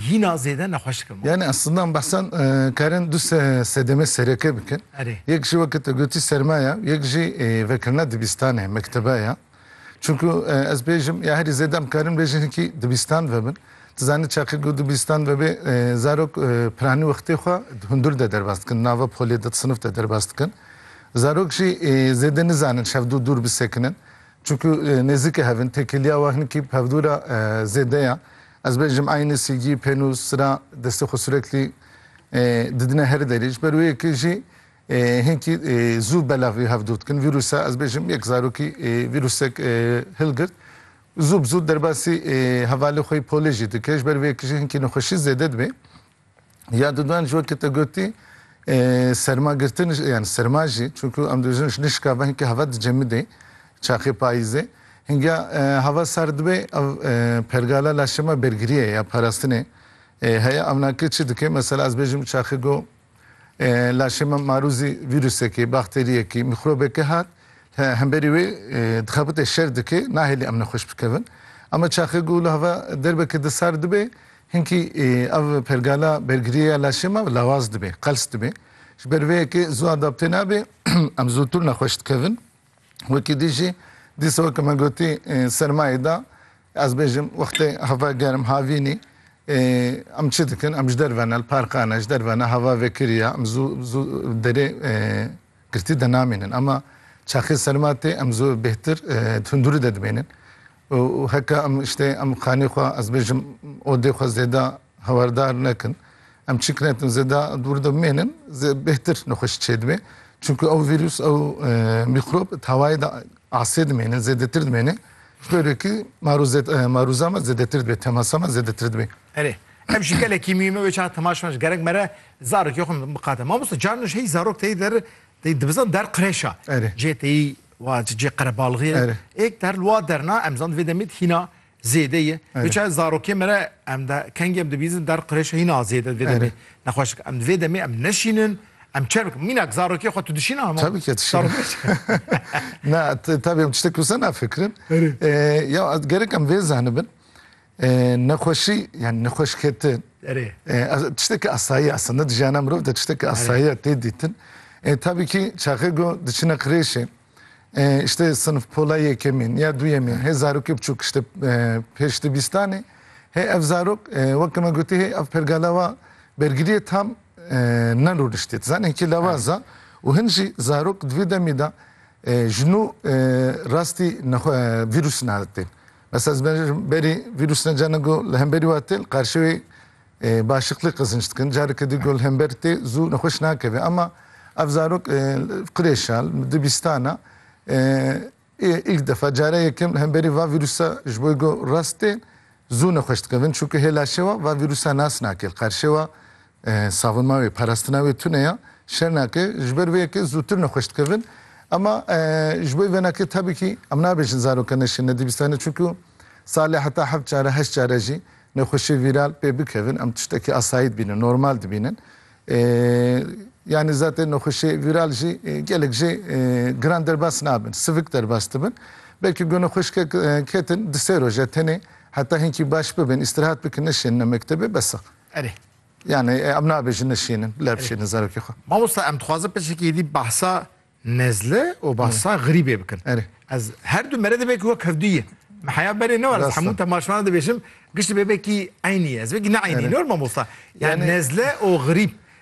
Hîna zêde nexweş dikim. Yani aslında em behsa karin du sedemê sereke bikin. Erê. Yek jî weke te gotî serma ye, yek jî vekirina dibîstan e, mektebe ye. Çunku ez bêjim ya herî zêde em karin bêjin hikî dibîstan vebin. Tu zanî çaxê ku dibîstan vebê zarok piranî wextê xwe di hundir de derbas dikin, di nava polê de, di sinif de derbas dikin. Zarok jî zêde nizanin şevdû dûr bisekinin. Çunku nêzîkê hev in, têkiliya wan hikî bi hevdûra zêde ye. Ez bêjim aynî sîgî, pênûs, sira destê xwe sureklî didine herî derî. Ji ber wê yekê jî hinkî zû belexî hev dûr dikin. Vîrûsa ez bêjim yek zarokî vîrûsek hilgirt zû bi zû derbasî hevalê xwe yî polê jî dike. Ji ber vê yekê jî hinkî nexweşî zêde dibe. Ya dudan jî wekî te gotî sermagirtin yani serma jî çunku em dibêjin ji nişka ve hinkî hava dicemidê çaxê payîzê hinga hava sar dibê ev pergala laşema bergiriyê ya parastinê heye ev nake çi dike mesela ez bêjim çaxê go laşema marûzî vîrusekê bakteriyekî mîxrobekê hat hemberî wê dixebite şer dike nahêlî em nexweş bikevin Ama çaxê go li hava derbeke di sar dibê Hinkî ev pergala bergirîya laşê me lawaz dibe, qels dibe. Ji ber vê yekê zû adapte nabe, em zûtir nexweş dikevin. Wekî dî jî dîsa weke me gotî sermayê da, ez bêjim wextê hava germ havînî em çi dikin, em ji derve ne li parka ne, ji derve ne hava vekirî ya, em zû zû derê Girtî de namînin ama çaxê serma tê em zû bêhtir di hundurî de dimênin û heke em îştê em xanê xwe ez bêjim odê xwe zêda hewerdar nekin. Em çîk netin zêda dûr de bimênin zê bêhtir nexweşî çêdibê. Çunku ew vîrus ew mîkrob di hewayê de asê dimênin zêdetir dimênê. Ji bo rê kî marûza me zêdetir dibê, temasa me zêdetir dibê. Erê. Ev jî gelekî muhîm e wê çaxa temaşeman ji gerek mere Zarok ya xwe miqate. Mamoste carina ji heyî zarok teyî der teyî dibizan der qirêşa. Erê. Cê teyî wa cê qerebalixê ye. Erê. Êk der li wa derna em zan divê demê de hîna zêde ye. Erê. Wê çaye zarokê me re em de kengê em dibîzin der qirêşa hîna zêde divê demê. Erê. Nexweş em divê demê em neşînin em çer bikin. Mînak zarokê xwe tu dişîna hema. Tebî ke dişînim. Zarok dişîne. Na tebî em tiştek wisa nafikirin. Erê. Ya gerek em vê zenibin. Nexweşî yanî nexweşketin tiştekî asayî ye. Eslinda di jiyana mirov de tiştekî asayî ye tê dîtin. Tabîkî çaxê ku diçine qirêşê îşte sinf pola yekemîn ya duyemîn hê zarokê biçûk îşte pêş di bîstanê hê ev zarok weke me gotî hê ev perga lawa bergiriyê tam ne rûniştê. Ti zanî hikî lawaz e û hin jî zarok di vî demî de ji nû rastî vîrûs naditên. Esas bence ji berî vîrûs ne carna ku li hemberî we tê li qarşewê başiqlî qizinç dikin. Careke din ku li hember tê zû nexweş nakeve. Ama ev zarok qirêşa li dibîstana îlk defa care yekem li hemberî va vîrûsa ji bo ku rast tê zû nexweş dikevin. Çunku hê laşê we va vîrûsa nas nake li qarşê we Savunma wê, parestina wê tune ya. Şernake ji ber vê yekê zûtir nexweş dikevin. Ema ji bo venakê tabîkî em nabêjin zaroka neşê nedîbîstane çunku salê heta heft care heşt care jî nexweşê vîral pê bikevin em tiştekî asayî dibînin, normal dibînin. Yanî zatên nexweşê vîral jî gelek jê giran derbas nabin, sivik derbas dibin. Belkî ku nexweşkek ketin di sê roje tenê heta hinkî baş bibin, îstirahat bikin, neşênine mektebê bes e. Erê. Yanî em nabêjin nişînin, lebişînin zarokê xwe. Mamosta em dixwazin pirseke êdî behsa nezle û behsa xirîbê bikin. Erê. Ez her du mere divê ku wek hev du ye. Me heya berê ne war ez hemû temaşvanan dibêjim giş dibê vekî eynî ye. Ez vekî ne eynî ne war mamosta. Yani nezle û xirîb.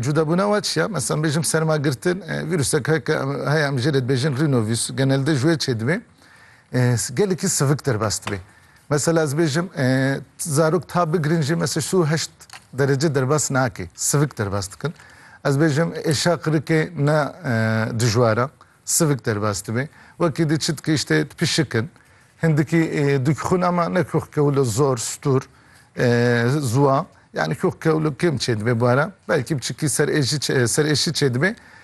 Cudabûna wan çi ye? Meselan bêjim sermagirtin, vîrusek heke heye em jê re dibêjin rînovîs, genelde ji wê çê dibe gelekî sivik derbas dibe. Mesela ez bêjim zarok ta bigirin jî mesela sî û heşt derece derbas nake, sivik derbas dikin. Ez bêjim êşa qirikê ne dijwar e. Sivik derbas dibe. Wekî di çit gihîşte di pişik in. Hindikî dûk xwîna ma ne kûx kewilo zor, stûr, ziwa. Yanî kûx kewilo kêm çêdibe bara. Belkî biçikî serêşî çêdibe.